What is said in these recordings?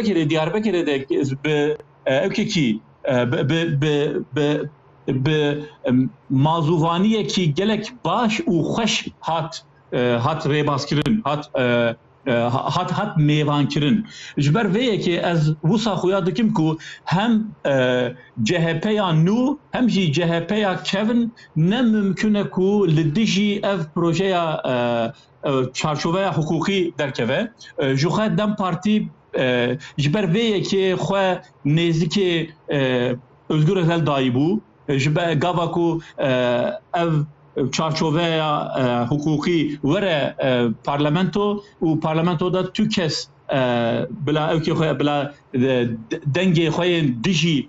Diyarbekirê Diyarbekirê de bi evkekî bi mazûvaniyekî gelek baş û xweş hat hat rêbazkirin hat hat hat mêvankirin. Ji ber vê yekê ez wisa xuya dikim ku hem CHPya nû hem jî CHPya kevn ne mimkune ku li dijî ev projeya çarçoveya hiqûqî derkeve. Ji xwe dem partî ji ber vê yekê xwe nêzikê Ozgur Özel dayî bû ji be gava ku ev çarçoveya hiqûqî were parlamento û parlamento de tu kes bila ewkê xwe bila dengê xwe yên dijî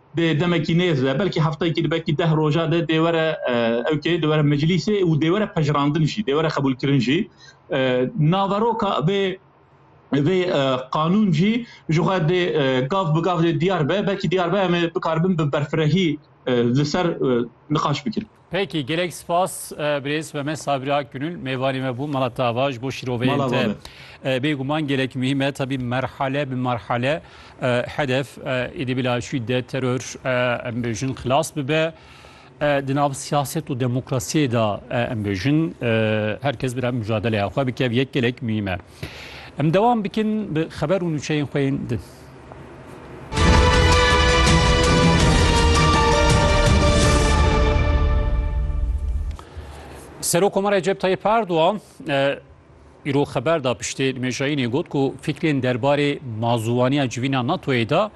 Dê demekî nêz be, belkî heftayekî di belkî deh roja de dê were ewkê, dê were meclîsê û dê were pejirandin jî, dê were xebûlkirin jî. Naveroka vê vê qanûn jî ji xwe dê gav bi gav dê diyar be, belkî diyar be em ê bikaribin bi berfirehî li ser niqaş bikin. Peki gelek spas birêz ve me Sabri Akgünül mêvanê me bû mala tava ji bo şîroveyên te bêguman gelek muhîm e tabî merhale bi merhale hedef êdî bila şîdet teror em bêjin xilas bibe di nav siyaset û demokrasiyê de em bêjin herkes bi re mujadeleya xwe bike yek gelek muhîm e. Em dewam bikin bi xeber û nûçeyên xwe yên din. Serokomara Recep Tayyip Erdoğan îro xeber da piştê nimêjayînê got ku fikrên derbarê mazûwaniya civîna NATOyê de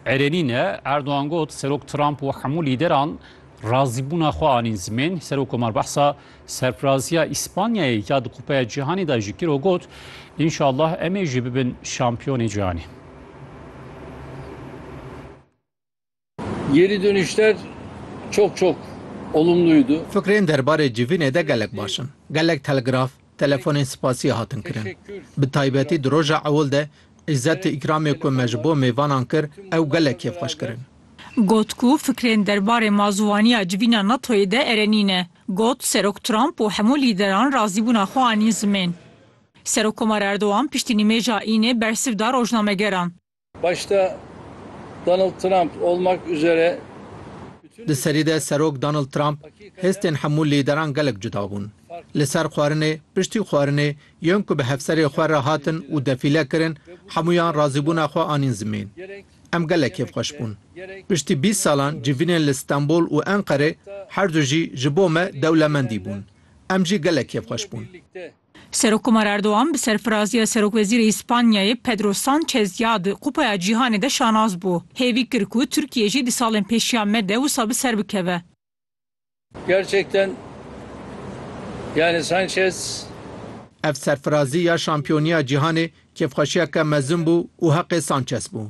erenî ne. Erdoğan got Serok Trump û hemû lîderan razîbûna xwe anîn zimên. Serokomar behsa Serfiraziya Îspanyayê ya di Kupeya Cîhanê de jî kir û got, Înşallah em ê jî bibin şampiyonê cîhanê. Geri dönüşler çok çok olumluydu. Fikrên derbarê civînê de gelek baş in. Gelek telgraf, telefonên spasiyê hatin kirin. Bi taybetî di roja ewil de îzzet û îkramê ku me ji bo mêvanan kir ew gelek kêfxweş kirin. Got ku fikrên derbarê mazûwaniya civîna NATO'yê de erenî ne. Got, Serok Trump û hemû lîderan razîbûna xwe anîn zimên. Serokkomar Erdogan piştî nimêja Înê bersiv da rojnamegeran. Başta Donald Trump olmak üzere bütün Di serî de Serok Donald Trump, Hestên hemû lîderan gelek cuda bûn. Li ser xwarinê, piştî xwarinê, yên ku bi hevserê xwe re hatin û defîle kirin, hemûyan razîbûna xwe anîn zimên. Em gelek kêfxweş bûn. Piştî bîst salan civînên li Stenbol û Enqerê her du jî ji bo me dewlemendî bûn. Em jî gelek kêfxweş bûn. Serokkomar Erdogan bi serfiraziya Serokwezîrê Îspanyayê Pedro Sanchez ya di Kupaya Cîhanê de şanaz bû. Hêvî kir ku Tirkiye jî di salên pêşiya me de wisa bi ser bikeve. Gerçekten yani Sanchez Ev serfirazî ya şampiyoniya cîhanê kêfxweşiyeke mezin bû û heqê Sanchez bû.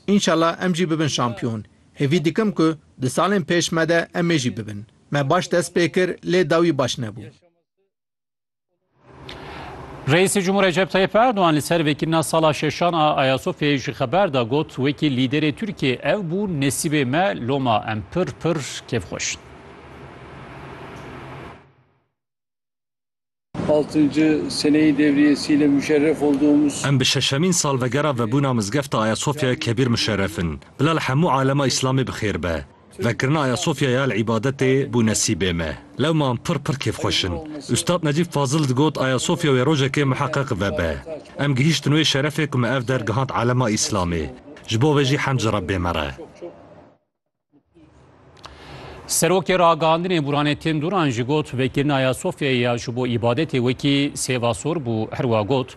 Înşela em jî bibin şampiyon. Hêvî dikim ku di salên pêş me de em ê jî bibin. Me baş dest pê kir lê dawî baş nebû. Reîsê Cumhur Recep Tayyip Erdogan li ser vekirina sala şeşan a Ayasofyayê ji xeber da got wekî lîderê Tirkiyê ev bû nesîbê me loma em pir pir kêfxweş in. Altıncı seneyi devriyesiyle müşerref olduğumuz Em bi şeşemîn salvegera vebûna mizgefta Ayasofyaya Kebîr muşerref in. Bila li hemû alema Îslamê bi xêr be. Vekirina Ayasofyaya li îbadetê bû nesîbê me. Lewman pir pir kêfxweş in. Ustad Necîb Fazil digot Ayasofya wê rojekê miheqeq vebe. Em gihîştin wê şerefê ku me ev der gihand alema Îslamê. Ji bo vê jî hemd ji Rebbê me re. Serokê Ragandinê Buranettin Duran jî got vekirina Ayasofyaya ji bo îbadetê wekî sêva sor bû. Herwiha got